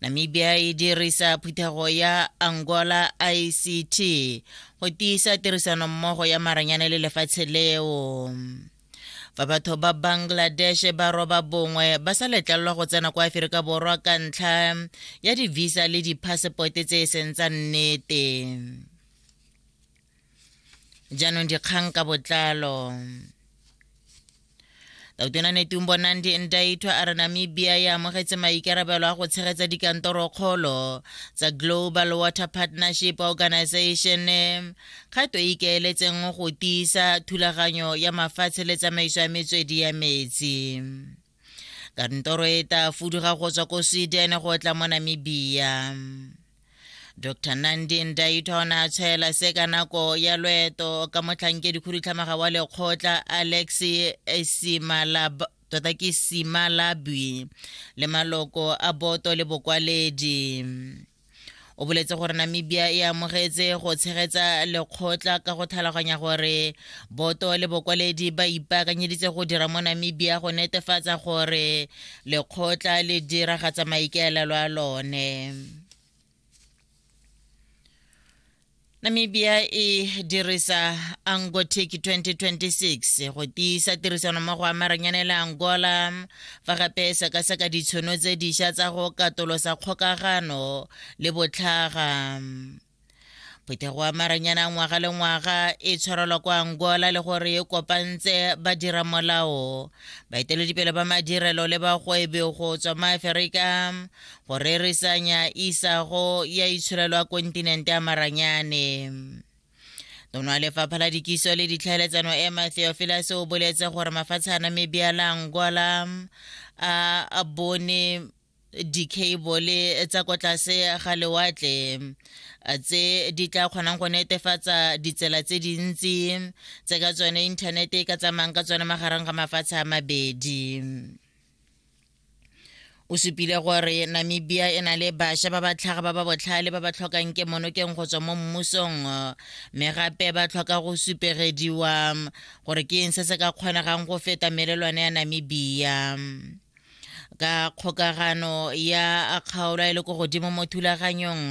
namibia e dirisa phuthego ya angola ict go tiisa tirisanommogo ya maranyane le lefatshe leo fa batho ba bangladesh ba roba bongwe ba sa letlelelwa go tsena kwa aferika borwa ka ntlha ya divisa le diphasepote tse e seng tsa nnete jaanong dikgang ka botlalo tautona netumbo nandi ndaithwa a re namibia e amogetse maikarabelo a go tshegetsa dikantorokgolo tsa global water partnership organization kgato e ikaeletseng go tiisa thulaganyo ya mafatshe le tsamaiso ya metswedi ya metsi kantoro e tla fuduga go tswa ko sweden go tla mo namibia dr nandin dayton a tshwaela se ka nako ya loeto ka motlhankedi khudutlhamaga wa lekgotla alex esimalab tota ke simalabwi le maloko a boto le bokwaledi o boletse gore namibia e amogetse go tshegetsa lekgotla ka go tlhaloganya gore boto le bokwaledi ba ipaakanyeditse go dira mo namibia go netefatsa gore lekgotla le diragatsa maikaelelo a lone namibia e dirisa angotic 2026 go tiisa tirisanommogo ya maranyane le angola fa gape e sekaseka ditshono tse dišwa tsa go katolosa kgokagano le botlhaga phetogo ya maranyane a ngwaga le ngwaga e tshwarelwa kwa angola le gore e kopantse badira molao baeteledipele ba madirelo le bagwebi go tswa maaferika go reresanya isago ya itshirelo ya kontinente ya maranyane tono wa lefapha la dikiso le ditlhaeletsano emma theophilus o boletse gore mafatshe a na mebeala angola a bone dicable tsa kwa tlase ga lewatle tse di tla kgonang go netefatsa ditsela tse dintsi tse ka tsone inthanete e ka tsamayang ka tsone magareng ga mafatshe a mabedi o supile gore namibia e na le bašwa ba ba tlhaga ba ba botlhale ba ba tlhokang ke monokeng go tswa mo mmusong mme gape ba tlhoka go supegediwa gore ke eng se se ka kgonegang go feta melelwane ya namibia ka kgokagano ya kgaolo e le ko godimo mo thulaganyong